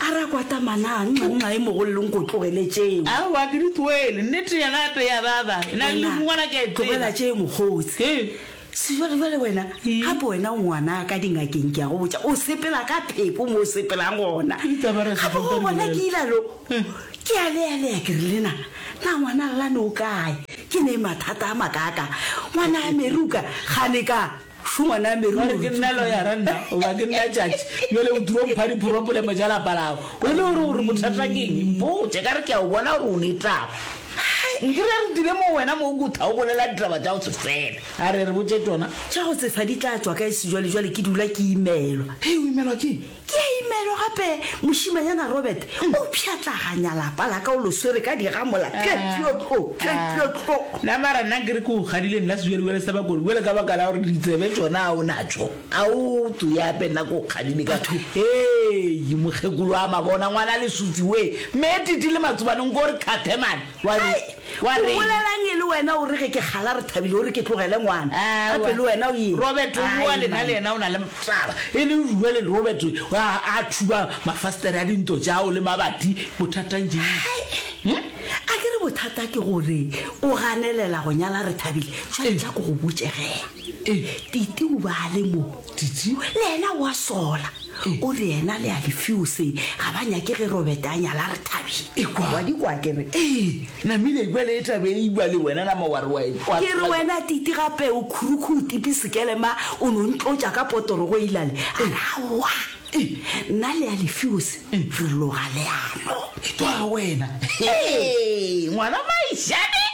A re a kwata manaa, nxa, nxa e mogollong ko tlogele tšeo. Aowa, ke di tsoele. Nnete ya gape ya baba. E na le Wena, lerungwana ke a e tseba. tlogela tšeo mokgosi. He. Se jwale, jwale wena, gape wena o ngwanaa ka dingakeng ke a go botša, o sepela ka pheko mo o sepelang gona. Ke ditaba ra se Gape tšoka o bona ke dibolela. ile alo, ke a lealea ke re le na, na ngwana Lane o kae? Ke ne mathata a makaakaa. Ngwanaa Meruka, kgane ka. Šo ngwana me ruri. Ba re ke nna loyara nna goba ke nna judge bjale o tiro mpha diporobolemo tša lapa lago o le gore gore bothata ke eng mpotše ka re ke a o bona gore o ne taba hai nkere re dire mo wena mo o kutha o bolela ditaba tša go se fela a re re botše tona tša go sefa di tla tšwa ka e sejwalejwale ke dula ke imelwa hei o imelwa ke Ke a imelo gape mošimanyana Robert, o pšhatlaganya lapa la ka, o lo swere ka digamola, tlotlo, tlotlo, tlotlo. Na mara nna nkere ke go gadile nna sejwelejwele sa bakodi bjale ka baka la gore ditsebe tšona ga o natšo a o tso yape nna ke go kgadile ka hei mokgekolo a mabona ngwana lesutsi wee mme titi le matsobane nko re kgathe mane Wa re, wa re. O bolelang e le wena o re ge ke kgala re thabile o re ke tlogele ngwana. Aowa. Gape le wena o eng? Robert o boa lena Ae, le yena o na le mtaba. E le rure le Robert a, a thuba mafastere a dinto tšao le mabati. Bothatang jang? Hai, a ke re bothata ke gore o ganelela go nyala Rethabile. Jwale tla ko go botše ge. Ee. Titi o ba a le mo. Titi? Le yena o a sola. O re yena le a Lefiose ga ba nyake ge Robert a nyala re thabile. Ekwa. Wa di kwa ke re. Ee, Namile ekwa le etabe e ikwa le wena nama wa re wa ekwa. Ke re wena Titi gape o khurukhutipi sekelema o no ntlotša ka potorogo e ilale. A re aowa. Nna le Alefeose re loga leano. Ke twa ga wena. Ee, ngwana Maishane,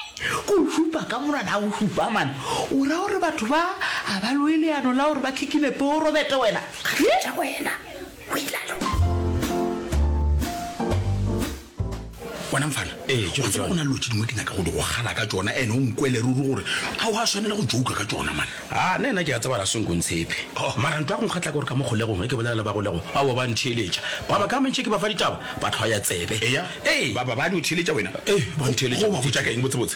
go šupa ka monwana a go šupa man. O ra gore batho ba a ba loe leano la gore ba khikinepe o robete wena. Ga tša wena, o ilalo. bona mfana gotseba go na lo tse dingwe ke nyaka go di go gala ka tsona ene o nkwele ruri gore a o a tshwanela go jouka ka tsona mane a nna ena ke a tsebala senko ntshepe oh. mara ntlo ya go nkgatla gore ka mo golegong e ke bolela le ba golego a o ba ntheeletša ba ba ka mentšhe ke ba fa ditaba ba tlhwa ya tsebe ee ba ba ba no theeletša wena ee ba ntheeletša ba botsa ka eng botse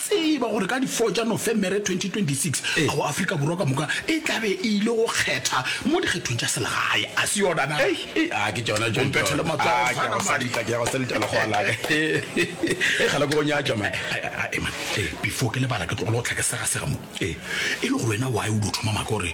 Tseba gore ka di 4 tša Nofemere 2026 ao Afrika Borwa ka moka e tla be e ile go kgetha mo dikgethong tša selegae, a se yona na? Ei, a ke tšona tšo, Mpethele matsogo, a ke a go salita, ke a go salita lekgowa la ka. Ei, kgale ke go nyatša man. Eman, before ke lebala ke tlogele go hlakesega sega mo, e le gore wena why o dio thoma maka gore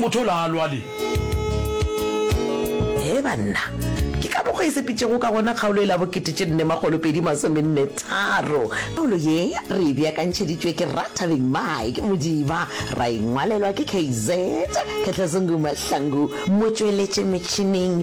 Motho o la lwa le. Hee banna, ke ka mokgwa e sepetšego ka gona kgaolo e la bokete tše nne makgolo pedi masome nne tharo. Kgaolo ye re e beakantšheditšwe ke Rra Thabeng Mike Modiba, ra e ngwalelwa ke KZ Khetlezungu Mahlangu, motšweletši metšhineng